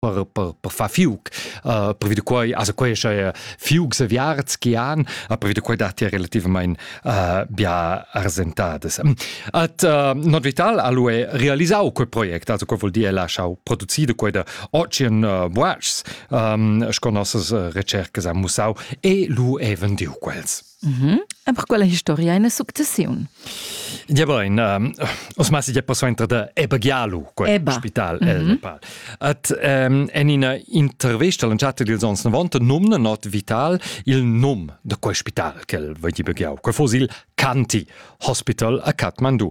per, per, per far fiug. Uh, per vide quai, also quai è fiug se viarts che han, a per vide quai dati relativament uh, bia arsentades. At uh, Not Vital ha lui realisau quel project, also quel vuol dire lasciau producire quella Ocean uh, Watches, um, sco nossas uh, recercas han musau, e lui è vendiu quels. Mm -hmm. E per quella historia è una successione. Diaba in os mas ja posso entrar da Ebagialu, quel Eba. spital mm -hmm. el Nepal. At um, en ina intervista lanciata dils ans 90 numna not vital il num de quel spital che el va di Begiau, quel fos il Canti Hospital a Kathmandu.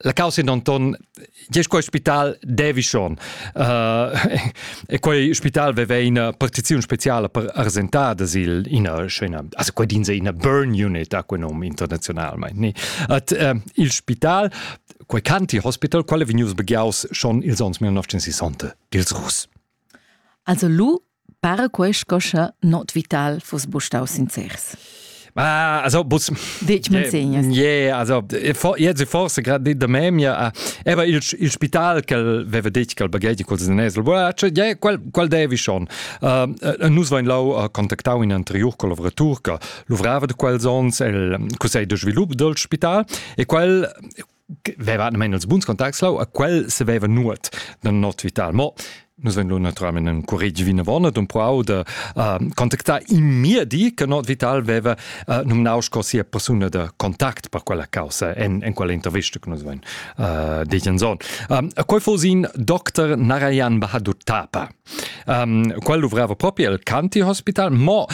La causa in Anton Diesch quei spital devi schon. Uh, e quei spital veva ina partiziun speciala per arsentada sil ina scena. Also quei din se ina burn unit a quei nom internazionalmente. Ni. At uh, il spital quei County Hospital quale vegnius begiaus schon ils ons 1960 dils Russ. Also lu para quei sco sche not vital fuss buc staus sincers. Ma also bus Ditg manzegnas. Ie, also jetzt forse gerade da memia. Aber il il spital che aveva detto che il baghetti col senesel, voilà, cioè, yeah, quel quel devi schon. Uh, nus vain lau contactau in anterior collaboratur che luvrava da quels ons el Conselh de svilup del spital e quel veva men els buns contacts lau a quel se veva nuot da not vital mo nus ven lu naturalment in curigi vinavona dum prau de uh, contactar in mir di che not vital veva uh, nominau sco sia persona de contact per quella causa en, en quella intervista che nus ven uh, degen son um, a quei fosin dr Narayan Bahadur Tapa um, quel luvrava proprio el Canti Hospital mo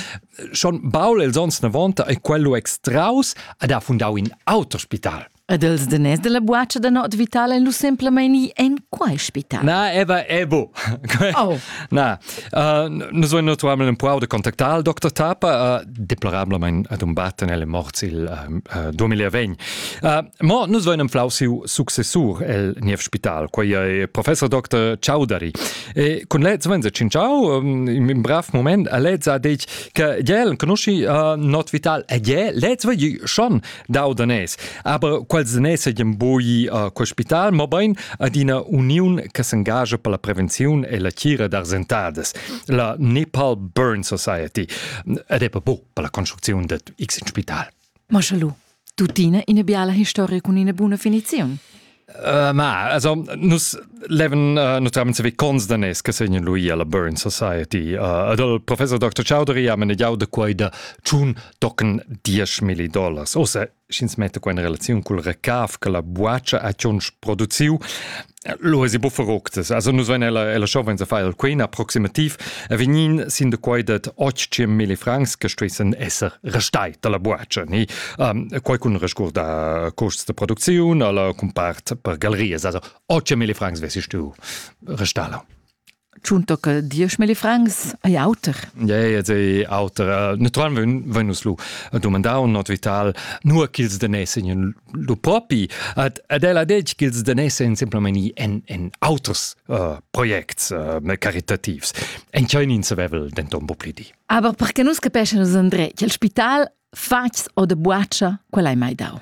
schon Paul els ons 90 e quello extraus ad ha fundau in auter spital. Ed els denes della buaccia da not vitale lu semplamaini en quai spital? Na, eva ebo. oh. Na, uh, nus voin naturalment un po de contactar al Dr. Tapa, uh, deplorablement ad un batten elle morts il uh, 2020. Uh, mo nus voin un flau siu successur el niev spital, quei è professor Dr. Ciaudari. E cun lezza venza cinciau in um brav moment a lezza detg che gel conosci uh, not vital e gel lezza vi schon dau danes aber quels danes ein boi uh, hospital ma bein ad ina uniun che s'engagia per la prevenzione e la cura d'arsentadas la Nepal Burn Society ed è per bo per la construzione de X in spital Ma scha lu, tuttina ina biala historia cun ina buna finiziun. Uh, ma, also, nus leven uh, notamment se cons da nes che segnen lui alla Burn Society. Uh, ad al professor Dr. Chowdhury haben ja de quai da tschun tocken 10.000 dollars. Osa, schins mette qua in relazion col recaf che la buacia a tschunsch produziu, Lo esi bufferoctas. Also nus vein ella ella show venza file queen approximativ vegnin sin de quai dat 800 mille francs che stuessen esser restai dalla buatscha ni um, quai cun resguarda costs de produziun alla compart per galerias also 800 mille francs wessi du restala. Tschunto che diesch milli francs ei auter. Ja, ja, ei auter. Naturalmente wenn uns lu domandar un not vital, nur ch'ils danesen in lu propi. Ad ad ella detg ch'ils danesen simplement en en auters uh, projects uh, caritativs. En chein in savevel denton bo pli di. Aber perché nus capeschan nus André, che il spital fatgs o de buaccia, quella hai mai dau.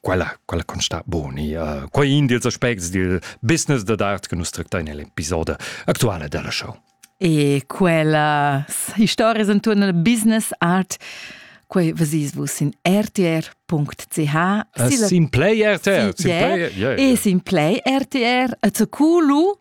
quella, quella con sta boni. Uh, quei in dils aspects dil business da d'art che nus tractai nell'episodio attuale della show. E quella historia intorno al business art quei vasis vus in rtr.ch uh, sin play rtr sin play, yeah, yeah, yeah. e sin play rtr a culu